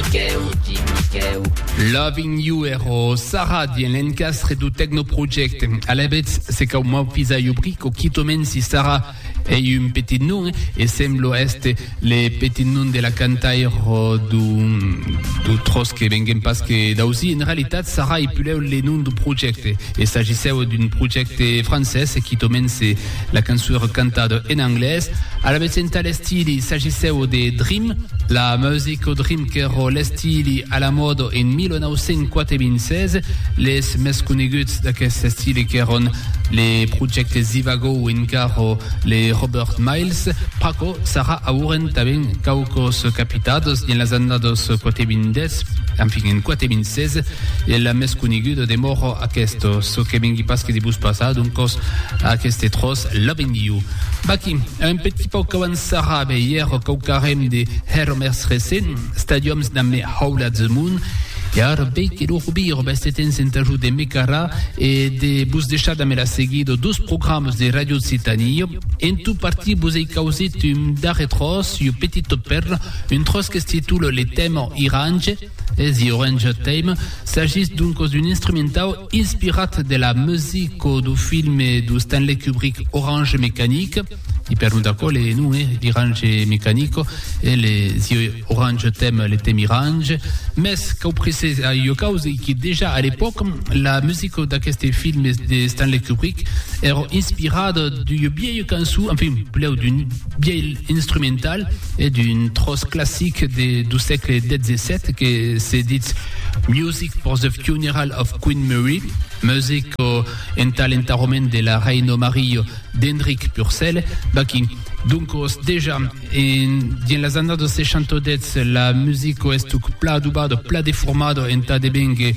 Miquèu, Ti Miquèu. Loving You ero Sarah dien l'encastre do Tecno Project. Alavetz, se cau m'aufisar jo brico, quitoment si Sarah ei un petit nom e semblo èster le petit nom de la cantaire do, do tros que venguem pas que d'ausir. En realitat, Sarah ei pulèu le nom do projècte. E s'agissèu d'un projècte francés e quitoment se La cançon èra cantada en anglés. Alavetz entà l'estili s'agissèu de Dream, la musica Dream qu'èra l'estili a la mòda en 1996. Les mès coneguts d'aquest estili qu'èran le projècte Zivago o encara le Robert Miles. Pr'aquò sarà auren tanben quauquas capitadas dins las annadas 420, enfin en 426, E la mès coneguda demòra aquesta, çò que vengui pas que de vos passar, doncas aqueste tròç la vendiu. Vaquí, a un petit pauc qu'abans sarrava e ièr quauquarren de hèr mès recent, stadiòms damb me haulat de mon, e ara vei que lo robir vèste temps entà jo de me carar e de vos deishar damb la seguida dos programas de Ràdio Occitània, en tot partir vos ei causit un darrer tròç, ua petita pèrla, un tròç que es titula Le Thème Irange, E The Orange Theme s'agís doncos d'un instrumentau inspirat de la musica dau filme du Stanley Kubrick Orange Mécanique, i per non d'aquò le non e L'Irange Mécanico e le The Orange Theme, le tèmi irange, mès cau precisar ua causa e que dejà a l'epòca la musica d'aqueste filme de Stanley Kubrick èra inspirada d'ua bièia cançon, enfin, plèu d'un bièi. instrumental e d'un tròç classic de du sègle xvii que se ditz Music for the Funeral of Queen Mary, music o entà l'entarrament de la Reina Maria, d'Enric Purcell. Vaquí. Doncos, dejà, en, dins las annadas 68, la musica estuc pla adubada, pla deformada entà devenguer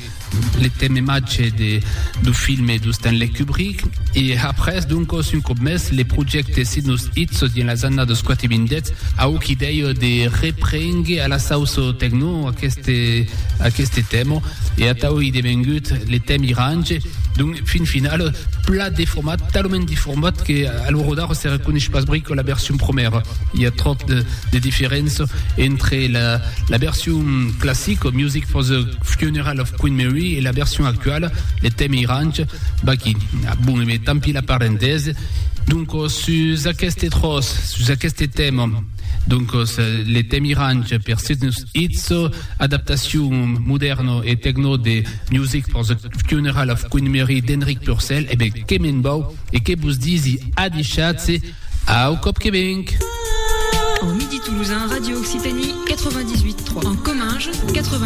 Le temematge de, du filme du Stanley Kubrick e après doncos un còp mès le projècte Sidnus Itsos dins las annadas quati vindètz au qui dèia de reprénguer a la sauço tecno aqueste aqueste tèmo e atau ei devengut le tèm irange donc fin final plat deformat talament deformat que a lo rodar se reconesh pas brico la version promèra i a tròp de de diferença entre la la version classico music for the Funeral of Queen Mary e la version actuala de Temi Iranch Baki. Bon, e ben, tant pis la parentèse. Doncos, sus aqueste tròç, sus aqueste tèma, doncos, le Temi Ranch per Sidnus Itzo, adaptacion modèrna e tecno de Music for the Funeral of Queen Mary d'Enric Purcell, e ben, que me'n vau e que vos disi adishatz-se au còp que venc! En Midi Toulousain, Radio Occitanie 98.3. En Comminges 89.